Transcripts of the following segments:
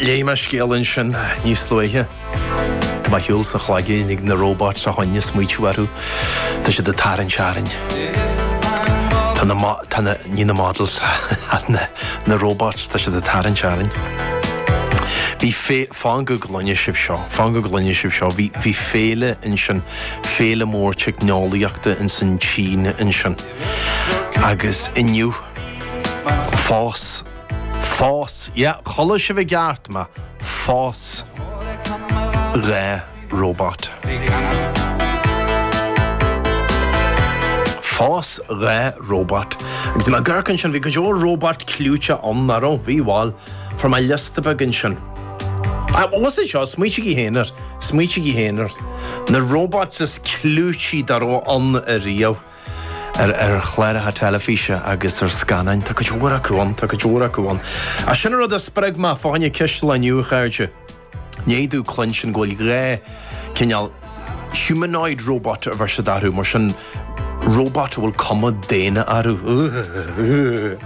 Léigh mé scéal ansin níos luaithe. Tá mé ar shiúl sa chloigeann ag na róbait ó shin ag smaoitiú orthu. Tá siad ag tarraingt orainn. Tá na, tá na, ní na models, na, na róbait, tá siad ag tarraingt orainn. Bhí fé fan go gcluine sibh seo, fan go gcluine sibh seo, bhí bhí féile ansin féile mór teicneolaíochta in san tSín ansin. Agus inniu phós Phós, yeah, chuala sibh i gceart mé, phós dhá róbat. Phós dhá róbat. Agus i m'aghairc ansin bhí go leor róbat clúiteach ann, an raibh? Bhí, bhal, fuair mé liosta beag ansin. Ah, bhfuil sé seo, smaoitigí féin air, smaoitigí féin air. Na róbait is clúití dá raibh ann ariamh. ar chláracha teilifíse agus ar scannáin. Tá cuid mhór acu ann. Tá cuid mhór acu ann. Ach sin an rud a spreag mé fá choinne ceist an lae inniu, a chairde. I ndiaidh domh cluinstin go bhfuil dhá chineál humanoid robot a bheir siad orthu, mar sin robot a bhfuil cuma daonna orthu.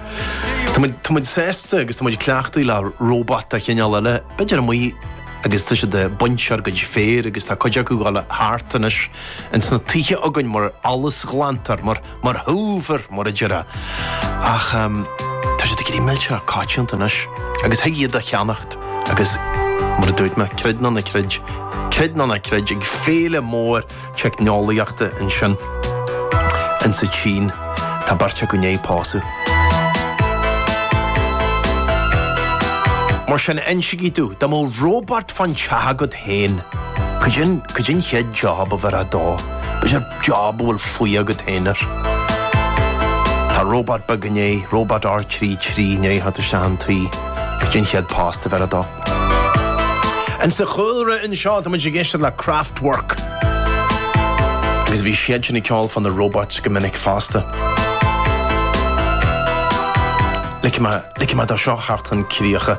Tá muid sásta agus tá muid cleachtaithe le robot de chineál eile, b'fhéidir amuigh agus tá siad ag baint ár gcuid féir agus tá cuid acu ag gabháil thart anois. in sna tithe againn mar fholúsghlantóir, mar, mar hoover, mar a déarfá. Ach ehm, tá siad ag éirí millteanach coitianta anois agus thig iad a cheannacht agus mar a dúirt mé, creid nó ná creid, creid nó ná creid ag féile mór teicneolaíochta ansin in sa tSín tá beirt acu i ndiaidh pósadh. Mar sin insigí domh, dá mbeadh robot fán teach agaibh féin. Caidé an chéad job a bhéarfá dó, b'fhéidir job a bhfuil fuath agat féin air. Tá robot beag i ndiaidh robot R trí trí i ndiaidh theacht isteach chun tí. Caidé an chéad post a bhéarfá dó. In sa chúlra anseo, tá muid ag éisteacht le Kraftwerk. Agus bhí siad sin ag ceol fá na robots go minic fosta. Ligfidh muid dó seo theacht chun críche.